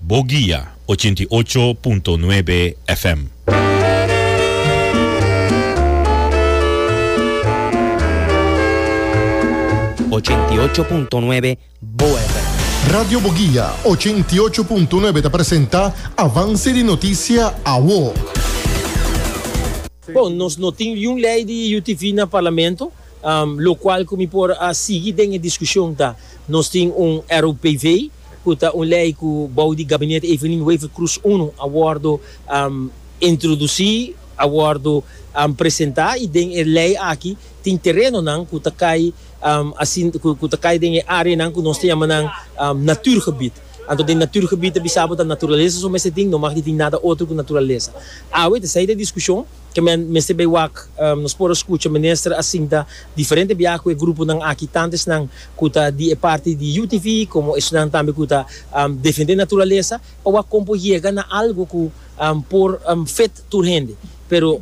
Bo guia ochenta i ocho punto nuebe FM. Ochenta i ocho punto nuebe Bo FM. Radio Bo Guia ochenta i ocho punto nuebe ta presenta Avance di Noticia Awo. Bon, nos no tin liun lei di UTV na Parlamento, locual cu mi por a sigui den e discusion ta, nos tin un ROPV, ku ta un lei ku bou di Gabinete Evelyn Wever Croes I a wòrdu introdusí, a wòrdu presentá i den e lei aki tin terenonan ku ta kai ku ta kai den e áreanan ku nos ta yama nan natuurgebied. Anto den natuurgebied ta bisa bo ta naturalesa su mester tin, no mag di tin nada otro ku naturalesa. Awe ta esei ta diskushon. Ke men mester bay wak? Nos por a scucha minister a sinta diferente biaha cu e gruponan aki, tanto esnan cu ta di e parti di UTV como esnan tambe cu ta defende naturalesa, pa wak con por yega na algo cu por fit tur hende. Pero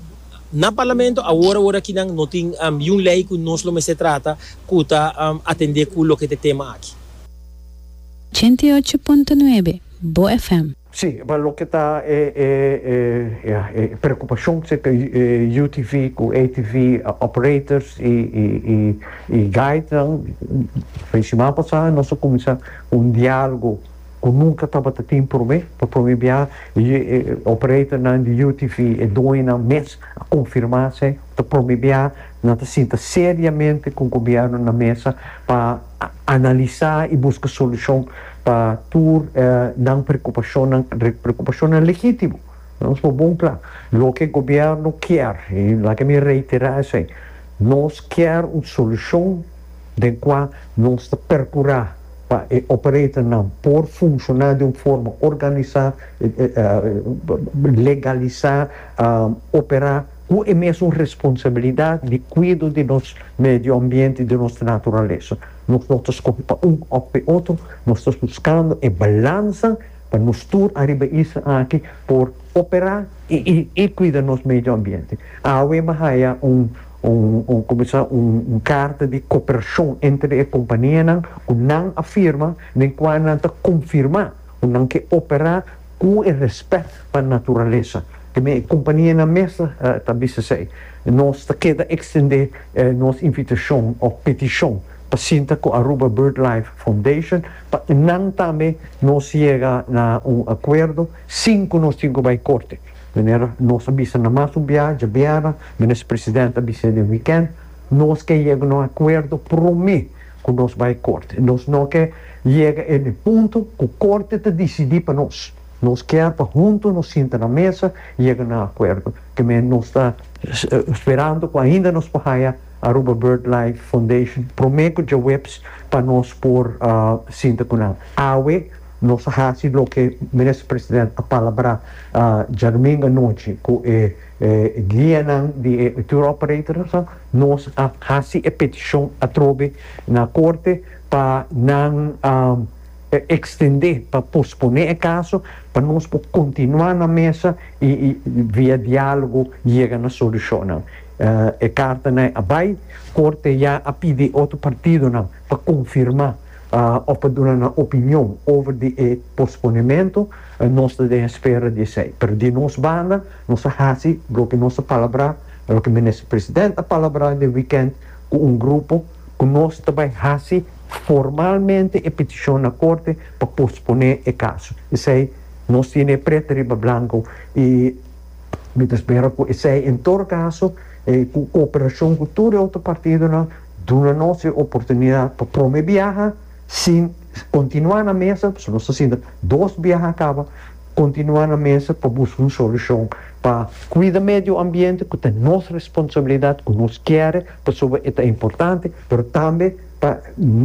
na Parlamento awor awor akinan no tin yiun ley cu nos lo mester trata cu ta atende cu loke ta e tema aki. Ochenta i ocho punto nuebe, Bo FM. Sí, pa loke ta e e e ya e preokupashon serka e UTV ku ATV operators i i i i guidenan fin di siman pasá nos a kuminsá ku un dialogo ku nunka tabata tin promé, pa promé biaha e e operatornan di UTV e doñonan mes a konfirmá sey ta promé biaha nan ta sinta seriamente ku gobièrnu na mesa pa. analisá i buska solushon pa tur e nan preokupashonnan, preokupashonnan legítimo. Nos por bon kla loke gobièrnu kier, i laga mi reiterá esei, nos kier un solushon den kua nos ta perkurá pa e operatornan por funshoná den un forma organisá, legalisá, operá. ku e mesun responsabilidat di kuido di nos medio ambiente i di nos naturalesa. Nos no ta skohe pa un òf pa e otro, nos ta buskando e balansa pa nos tur ariba e isla aki por operá i kuida nos medio ambiente. Awe mi a haya un, kòmo e sa, un karta di koperashon entre e kompanianan ku nan a firma den kua nan ta konfirmá ku nan ke operá, Ku e rèspèt pa naturalesa, teme e kumpanienan mes ta bisa esei, nos ta keda ekstendé nos invitashon òf petishon pa sinta ku Aruba BirdLife Foundation pa nan tambe nos yega na un akuerdo sin ku nos tin ku bai korte. Manera nos a bisa na mas un biaha djabièrnè, Minister President a bis'é den wikènt, nos ke yega na un akuerdo promé. ku nos bai korte. Nos no ke yega en e punto ku korte ta disidí pa nos. Nos kier pa huntu nos sinta na mesa yega na akuerdo. Te men nos ta sperando ku ainda nos por haya Aruba Birdlife Foundation prome ku djaweps pa nos por sinta ku nan. Awe nos a hasi loke Minister President a palabrá djadumingu anochi ku e guianan di e tour operators nan. Nos a hasi e petishon atrobe na korte pa nan ekstendé, pa posponé e kaso, pa nos por kontinuá na mesa i via diálogo yega na solushonnan. E kartanan a bai, korte ya a pidi e otro partidonan pa konfirmá òf pa duna nan opinion over di e posponementu. Nos ta den espera di esei. Pero di nos banda Nos a haci loke nos a palabra, a loke Minister President a palabra den weekend cu un grupo cu nos ta bay haci formalmente e peticion na Corte pa pospone e caso. Esey nos tiene e preto riba blanco y mi ta spera cu esey en todo caso e cooperacion cu tur e otro partidonan duna nos e oportunidad pa prome biaha Si kontinuá na mesa, pasobra nos ta sinta dos biaha a kaba, kontinuá na mesa pa buska un solushon pa kuida medio ambiente ku ta nos responsabilidat ku nos kere pasobra e ta importante, pero tambe pa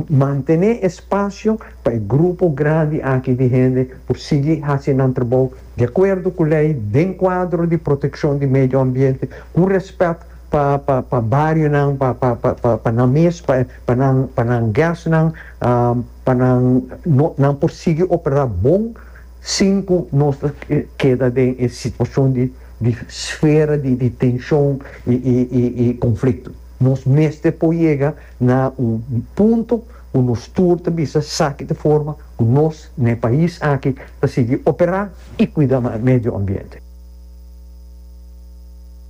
mantené e spasio pa e grupo grandi aki di hende por sigui hasi nan trabou di akuerdo ku lei, den kuadro di protekshon di medio ambiente, ku rèspèt pa pa pa barionan, pa pa pa pa nan mes. pa nan pa nan gasnan pa nan nan por sigui opera bon sin cu nos ta keda den e situacion di di sfera di di tencion y y y y conflicto nos mester por yega na un punto cu nos tur ta bisa esaki ta forma cu nos na e pais aki ta sigui opera y cuida medio ambiente.